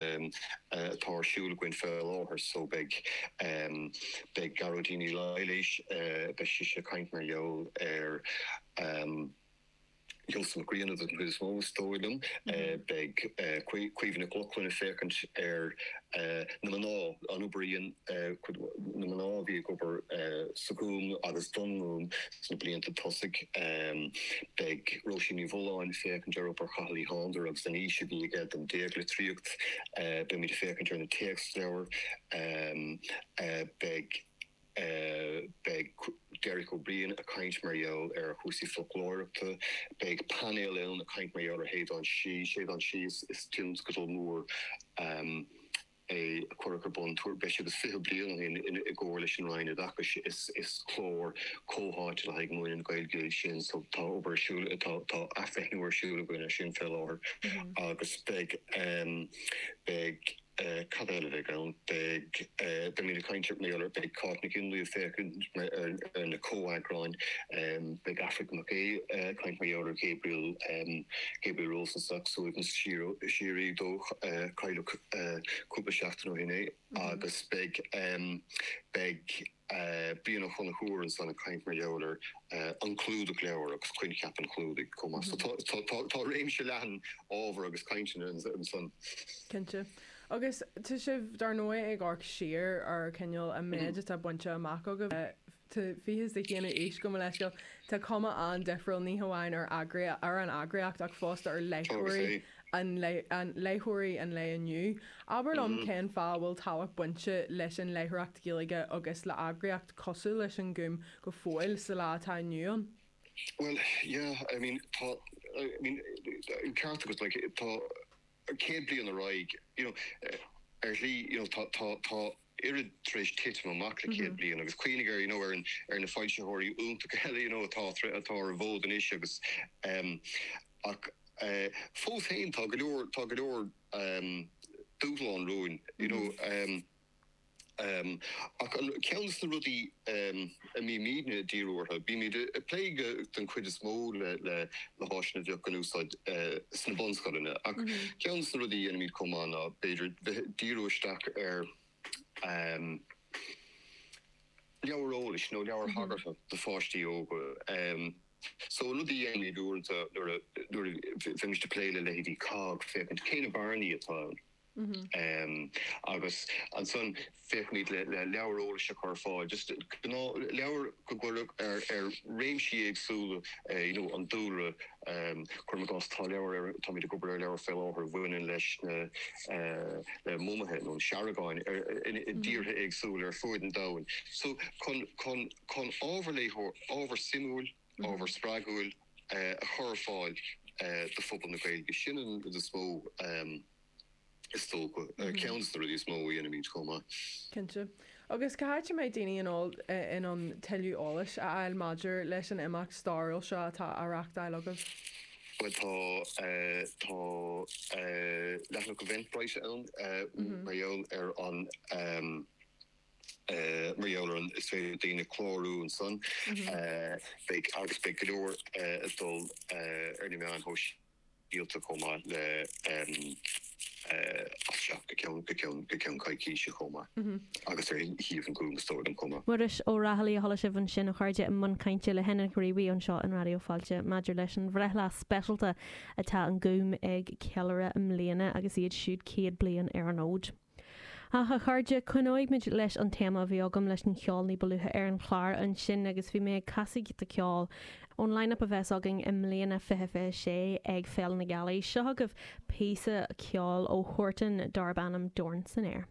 atá ar siúl againn fé láthair so beidh beidh Gearóidín Ní Laighléis beidh sise ag caint mar gheall ar Sheosamh Mac Grianna den chuid is mó is dóigh liom beidh Caoimhe Nic Lochlainn ag féachaint ar na mná an obair a dhéan cuid na mná a bhí ag obair sa Ghúm agus don Ghúm sna blianta tosaigh. Beidh Róisín Ní Mhulláin ag féachaint ar obair Chathail Uí Shándair agus an fhís a bhí aige don déaglitríocht. Beimid ag féachaint ar na téacsleabhair. Beidh Derek Ó Briain ag caint mar gheall ar chúrsaí foclóireachta. Beidh painéal ann ag caint mar gheall ar Shéideán Sí is tionscadal mór. é a cuireadh ar bun tuairim breis agus fiche bliain ó shin i gcomhar leis an Roinn Oideachais. Is clár comhtháite le haghaidh múineadh na Gaeilge é sin so tá obair ar siúl, tá athbhreithniú ar siúl againn air sin fé láthair agus beidh, beidh, cad eile a bheidh ann, beidh, beidh mé ag caint ar, mar gheall, beidh Cáit Nic Fhionnlaoich ag féachaint ar na comheagráin, beidh Aifric Mac Aodha ag caint mar gheall ar Ghabriel, Gabriel Rosenstock, suaimhneas síoraí dó, cailleadh, cúpla seachtain ó shin é agus beidh beidh Brian Ó Conchubhair ansan ag caint mar gheall ar an clúdach leabhar agus coincheap an chlúdaigh chomh maith. So tá tá réimse leathan ábhar agus cainteanna ansan. Cinnte. Agus tá sibh dar ndóigh ag amharc siar ar cineál an méid atá bainte amach agaibh. tá fiche is a haon d'aois gabh mo leithscéal. Tá cuma an-difriúil ní hamháin ar ar an eagraíocht ach fosta ar léitheoirí an an léitheoirí an lae inniu. Abair liom cén fáth a bhfuil tábhacht ag baint leis an léitheoireacht Ghaeilge agus le heagraíocht cosúil leis an nGúm go fóill sa lá atá inniu ann? Bhuel, yeah, I mean, tá, I mean, an ceart agat, like, tá céad bliain ar aghaidh, you know, ar shlí, you know, tá, tá, tá, oiread tar éis titim amach le céad bliain agus cuimhnigh ar you know ar na foilsitheoirí iontacha eile you know atá atá ar an bhfód anois agus ehm ach eh fós féin tá go leor tá go leor ehm dúshlán romhainn you know ehm ehm ach ceann de na rudaí ehm. I mean bímidne dírithe, bímid ag plé den chuid is mó le háiseanna a bheadh in úsáid sna bunscoileanna, ach ceann de na rudaí a dhéanaimid chomh maith ná b'fhéidir bheith ag díriú isteach ar leabhair eolais nó leabhair thagartha do pháistí óga. So, an rud a dhéanaimid uaireanta nuair a bheimis ag plé le leithéidí COGG, féachaint cé na bearnaí atá ann. Agus ansan féachfaimid le leabhair eolais a chur ar fáil, just gnáthleabhair go bhfuil ar réimsí éagsúla you know an dúlra, cuirim i gcás tá leabhar ar, táimid ag obair ar leabhar fé láthair a bhaineann leis na le mumaithe nó na seargáin i dtíortha éagsúla ar fuaid an domhain. So chun chun ábhar léitheoireachta, ábhar suimiúil, ábhar spreagúil a chur ar fáil do phobal na Gaeilge, sin an rud is mó. is dócha, ceann de na rudaí is mó a dhéanaimid chomh maith. Cinnte. Agus cá háit a mbeidh daoine in ann tuilleadh eolais a fháil maidir leis an imeacht stairiúil seo atá á reachtáil agaibh? Bhuel tá leathanach Eventbrite ann mar gheall ar an mar gheall ar an is féidir le daoine clárú ansan. Beidh agus beidh go leor ag dul ar na meáin shóisialta. sialta chomh maith le as seo go ceann coicíse chomh maith agus ar shuíomh an Ghúim is dóigh liom chomh maith. Muiris Ó Raghallaigh a chuala sibh ansin a chairde i mbun cainte le hEnna Ghriobhaigh anseo in Raidió Fáilte maidir leis an bhreithlá speisialta atá an Gúm ag ceiliúradh i mbliana agus iad siúd 100 bliain ar an fhód. Ach, a chairde, coinneoidh muid leis an téama a bhí agam leis an cheol ní ba luaithe ar an chlár ansin agus bhí mé ag casadh giota ceoil ón line-up a bheas againn i mbliana, fiche fiche sé, ag Féile na Gealaí. Seo agaibh píosa ceoil ó Huartan darb ainm Dorn san Aer.